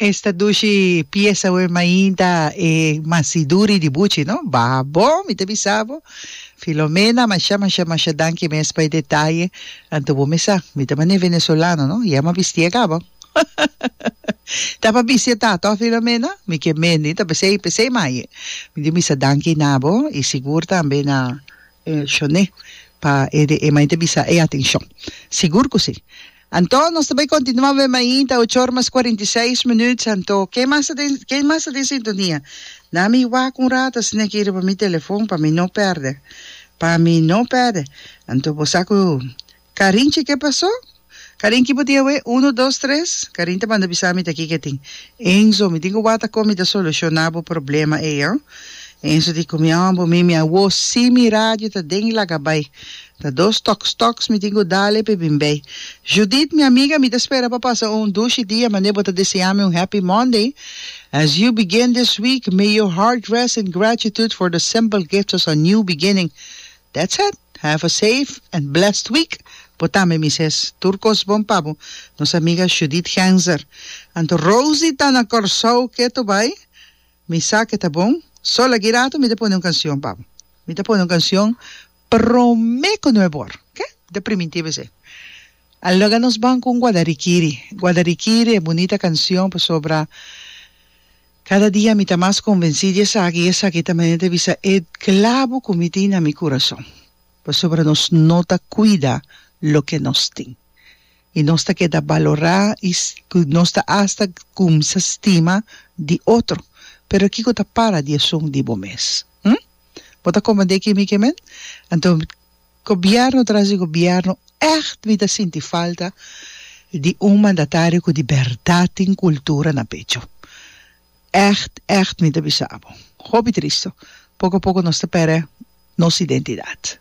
Esta dushi pieza web mainta e masiduri di buchi no baha bon mi ta bisa bo Filomena masha masha masha danki mes pa e detaye anto bo mi sa mi ta mane venezolano no ya ma bisti a kaba ta pa bisti a ta to Filomena mi ke mendi ta pesey pesey maye mi tin bisa danki na bo y sigur tambe na Shone pa e mainta bisa e atencion sigur cu si. Anto nos ta bay continua web ainta ocho or mas cuarenta y seis minuut anto ken mas ta den ken mas ta den sintonia nami wak un rato sne ki riba mi telefon pa mi no perde pa mi no perde anto bo sa cu Karin che ke paso Karin ki bo tin awe uno dos tres Karin ta banda bisa mi ta aki ke tin Enzo mi tin cu wata con mi ta soluciona bo problema ey ho Enzo di cu mi ambo mi mi awo si mi radio ta den y laga bay Ta dos toks toks mi tin cu dale pe bin bay. Judith mi amiga mi ta spera pa pasa un dushi dia mane bo ta deseami un happy Monday as you begin this week may your heart rest in gratitude for the simple gifts as a new beginning that's it have a safe and blessed week bo tambe mi ses tur cos bon pa bo nos amiga Judith Genzer anto Rosie ta na Corsou ke to bay mi sa ke ta bon so lagirato mi ta pone un cancion pa bo mi ta pone un cancion Prome ku no e bor. Ke? De primintibu esei. A loga nos ban ku un guadarikiri. Guadarikiri, e bunita kansion pasobra kada dia mi ta mas konvensí di esaki i esaki ta manera di bisa e klabu ku mi tin na mi kurason. Pasobra nos no ta kuida loke nos tin. I nos ta keda balorá i nos ta asta kumsa stima di otro. Pero kiko ta para di esun di bo mes? Hm? Bo ta komand'é kemi ke men? Anto gobièrnu tras di gobièrnu ègt mi ta sinti falta di un mandatario ku di bèrdat tin kultura na pecho. Ègt, ègt mi ta bisa abo. Hopi tristu. Poko a poko nos ta pèrdè nos identidat.